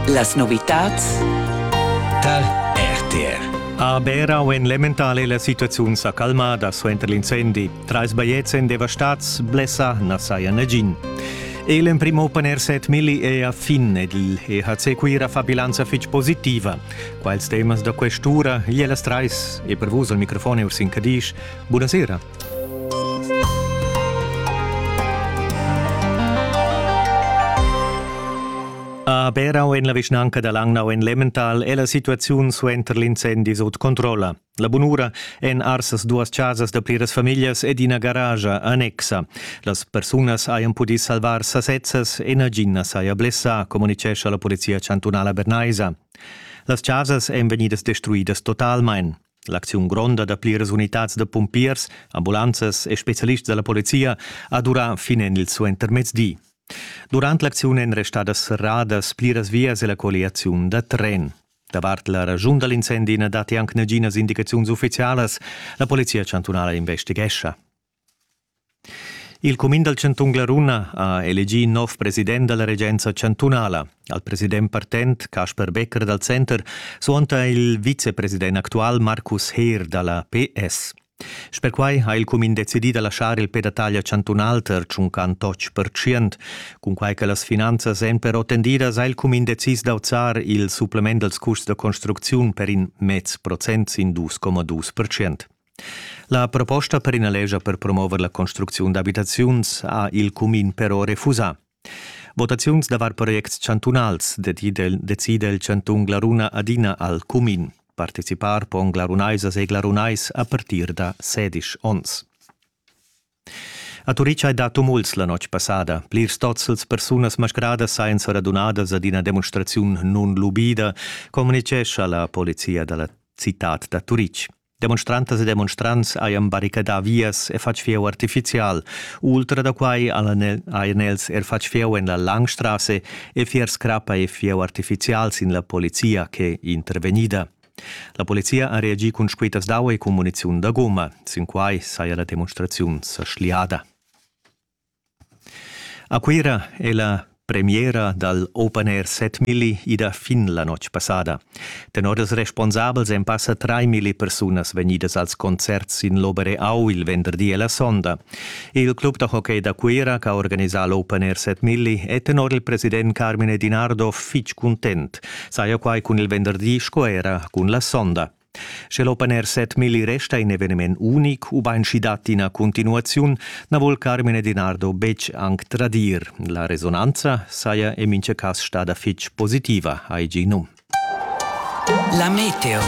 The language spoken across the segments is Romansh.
Las novitads tar RTR. A Bera u en l'Emmentale la situaziun sa calmada suenter l'incendi. Trais bajetgs èn devastads, blessa na saja nagin. E l'emprim open air set Milli è a fin ed il EHC Cuira fa bilanza fitg positiva. Quals temas da quest'ura? Ier las trais e per vus al microfon Ursin Cadisch. Buonasera. A Berau en la vischnanca da Langnau en Lemmental è la situaziun suenter l'incendi sut controlla. La bunura èn arsas duas chasas da pliras famiglias ed ina garagia annexa. Las persunas hajan pudì salvar sasezzas e nagin na saja blessà, communitgescha la polizia chantunala bernaisa. Las chasas èn vegnidas destruidas totalmain. L'acziun gronda da pliras unitads da pumpiers, ambulanzas e specialists da la polizia ha durà fin en il suentermezdi. Durant l'acziun èn restadas serradas pliras vias e la colliaziun da tren. Davart la ragiun da l'incendi na datti anc naginas indicaziuns uffizialas. La polizia chantunala investighescha. Il cumin dal chantun Glaruna ha elegì nov president da la regenza chantunala. Al president partent Casper Becker dal Center suonta il vicepresident actual Markus Heer da la PS. Sper quai ha il cumin decidì da laschar il pe da taglia chantunal ter tschuncan totg pertschient. Cunquai che las finanzas èn però tendidas, ha il cumin decis d'auzar il supplement dals curs da construcziun per in mez procent sin 2,2 pertschient. La proposta per ina lescha per promover la construcziun d'abitaziuns ha il cumin però refusà. Votaziuns davar projects chantunals decide il chantun Glaruna adina al cumin. Participar pon glarunaisas e glarunais a partir da sedisch onns. A Turitg hai dà tumults la notg passada. Plirs tozzels persunas mascradas sainza radunadas ad ina demonstraziun nunlubida, communitgescha la polizia da la citad da Turitg. Demonstrantas e demonstrants hajan barricadà vias e fatg fieu artifizial. Ultra da quai hajan els er fatg fieu en la Langstrasse e fiers crappa e fieu artifizial sin la polizia ch'è intervegnida. La polizia ha reagì cun squitas d'aua e cun muniziun da goma. Sin quai saja la demonstraziun sa schliada. A Cuira è la premiera dal Open Air 7000 ida fin la notg passada. Tenor ils responsabels èn passa 3.000 persunas vegnidas als concerts in l'Obere Au il venderdi e la sonda. Il club da hockey da Cuira, che ha organisà l'Open Air 7000, è tenor il president Carmine Dinardo fitg cuntent. Saja quai cun il venderdi sco era cun la sonda. Sche l'Open Air 7000 resta in eveniment unic ubain sch'i dat ina continuaziun, na vul Carmine Dinardo betg anc tradir. La resonanza saja en mintga cas stada fitg positiva, hai gì num. La meteo.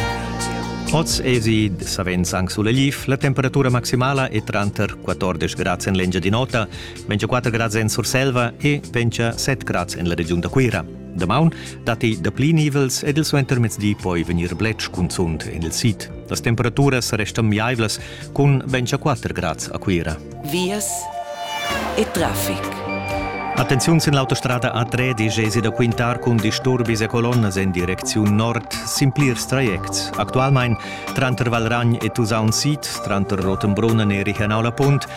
Oz esi savens anc sulegliv, la temperatura maximala è tranter 14 grads en l'Engiadin'Ota, 24 grads en Surselva e 27 grads en la regiun da Cuira. Damaun datti dapli nivels ed il suentermezdi poi vegnir bletsch cunzunt en il sid. Las temperaturas restan miaivlas cun 24 grads a Cuira. Vias e traffic. Attenziun sin l'autostrada A3 gesi da quintar cun disturbis e colonnas en direcziun nord sin plirs trajects. Actualmain tranter Valragn e Tusaun Sid, tranter Rottenbrunn e Richernau la Punt,